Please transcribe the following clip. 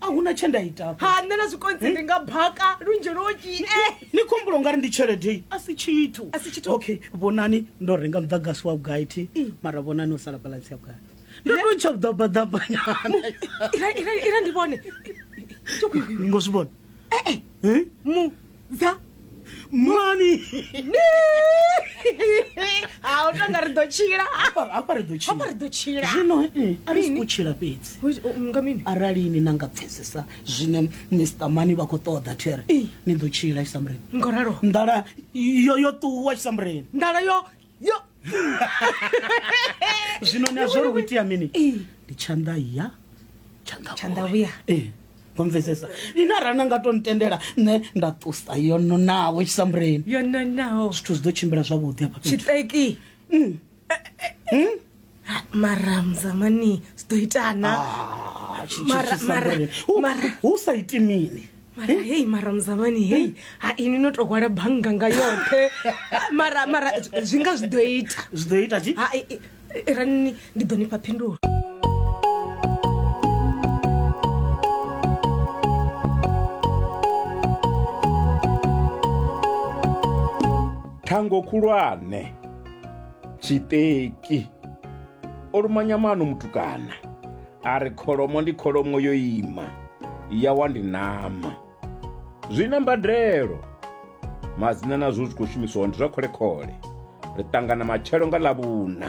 a hu na tshe nda ita ha nṋe na zwikonzi ndi nga baka lunzhi loki ni khombulo nga ri ndi tshelede a si tshithu A si tshithu. okay vhonani ndo renga muḓagasi wa vhugai thi mara vhonani o sala balansi ya vhugai ndo to tsha vhuḓabaḓabanyana ira ndi vhone ngo zwi vhona mu dza mani ha u tonga ri ḓo tshila hafha hafha ri ḓo hafha ri tshila ḓo tshila zwino mm, a ri si Mini? khou tshila fhedzi Hu- u- nga mini arali ni na nga pfesesa zwine mr mani vha khou ṱoḓa there Ee. ni ḓo tshila tshisamureni ngoralo nḓala yo yo ṱuwa tshisamureni nḓala yo yo zwino ni a zwo ri hu itea mini ndi tshanḓa ya tshanḓa vhuya ee vamvesesa ine arali na nga to ntendela nṋe nda ṱusa yo nonaho tshisambuleni yo nonaho zwithu zwi ḓo tshimbila zwavhuḓi hafha tshiṱeki mm. eh, eh, eh. Hmm? Ah, mara mzamani sidoitana Ah, chi- chi- Mara- chi- mara- Samboni. U- mara- u sa iti mini mara hei mara mzamani hei ha ini no to hwala bannga nga yoṱhe mara mara zwi- zwi nga zwi ḓo ita zwi ḓo ita chi ha i- i- i- rani ndi ḓo nifha phindulo thango khulwane Tshiṱeki. O luma nyamano mutukana a ri kholomo ndi kholomo yo ima ya wa ndi ṋama. Zwi na mbadelo. Madzina nazwo zwi khou shumiswa ndi zwa khole khole. Ri ṱangana matshelo nga ḽavhuna.